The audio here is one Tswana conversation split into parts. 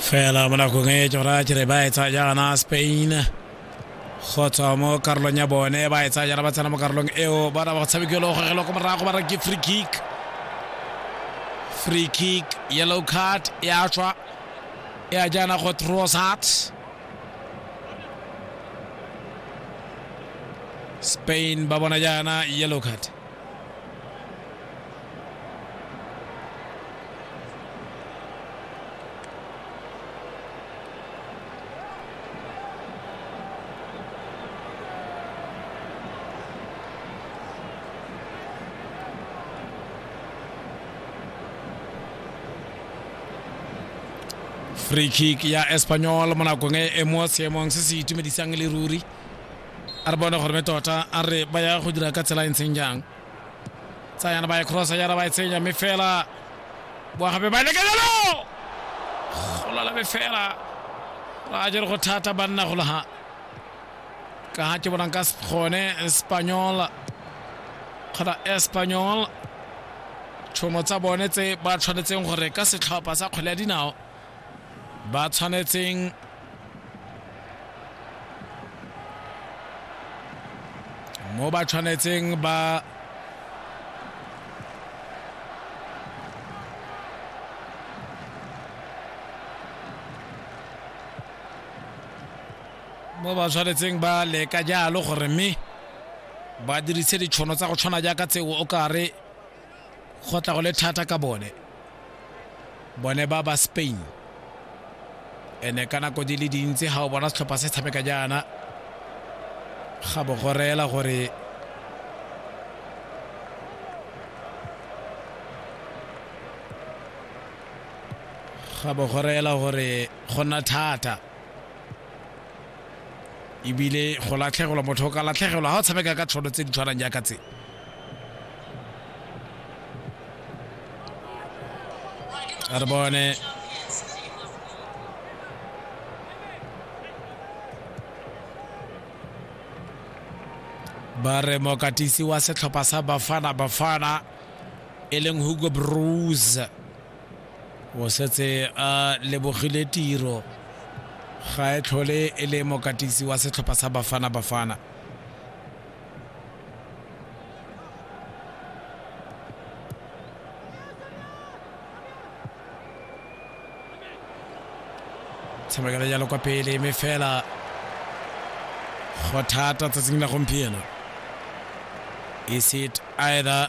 fela mo nakong e tsona kere ba e tsaya jaana spain go tswa mo karolong ya bone ba e tsaya jaana ba tsena mo karolong eo bona ba tshamekelo go gelo ko morago ba reke free kick free kick yellow card ya tswa ya jaana go trossard spain ba bona jaana yellow card free kick ya espanyol mo nakong e e mo seemong se se itumedisang le ruri a re bone gore me tota a re ba ya go dira ka tsela e ntseng jang tsayana ba e crossa yara ba e tsenya mme fela boagape ba leka jalo golala me fela ra jere go thata banna go laga ka ga ke bonang ka gone espanyol kgona espanyol tšhono tsa bone tse ba tshwanetseng gore ka setlhopha sa kgwele ya dinao ba tshwanetseng mo ba tshwanetseng ba mo ba tshwanetseng ba leka jalo gore mme ba dirise ditšhono tsa go tshwana jaaka tseo o kare Go tla go le thata ka bone, bone ba ba Spain. Ene ka nako di le dintsi ga o bona setlhopha se tshameka jaana, ga bo go reela gore ga bo go reela gore go nna thata ebile go latlhegelwa motho o ka latlhegelwa ga o tshameka ka tshono tse di tshwanang jaaka tse re bone ba re mokatisi wa setlhopha sa bafana bafana e leng hugo brose o setse a lebogile tiro ga e tlhole e le mokatisi wa setlhopha sa bafana bafana tshamekela jalo kwa pele mme fela go thata tsatsing la gompieno is it either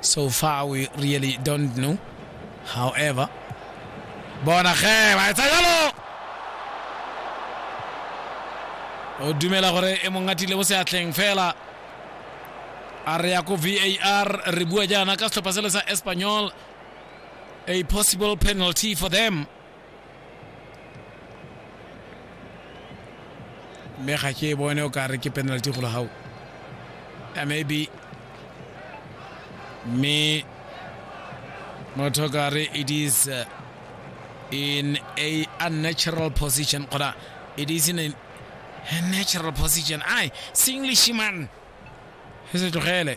So far we really don't know. However, bona ge ba etsa jalo o dumela gore e mong atile mo seatleng fela a re ya ko var re bua jaana ka setlhopha sele sa espanyol a possible penalty for them mme ga ke e bone o ka re ke penalty go gago a maybe mme motho ka re it is uh, in a unnatural position kgona it is in a, a natural position ai se english man se se tlogele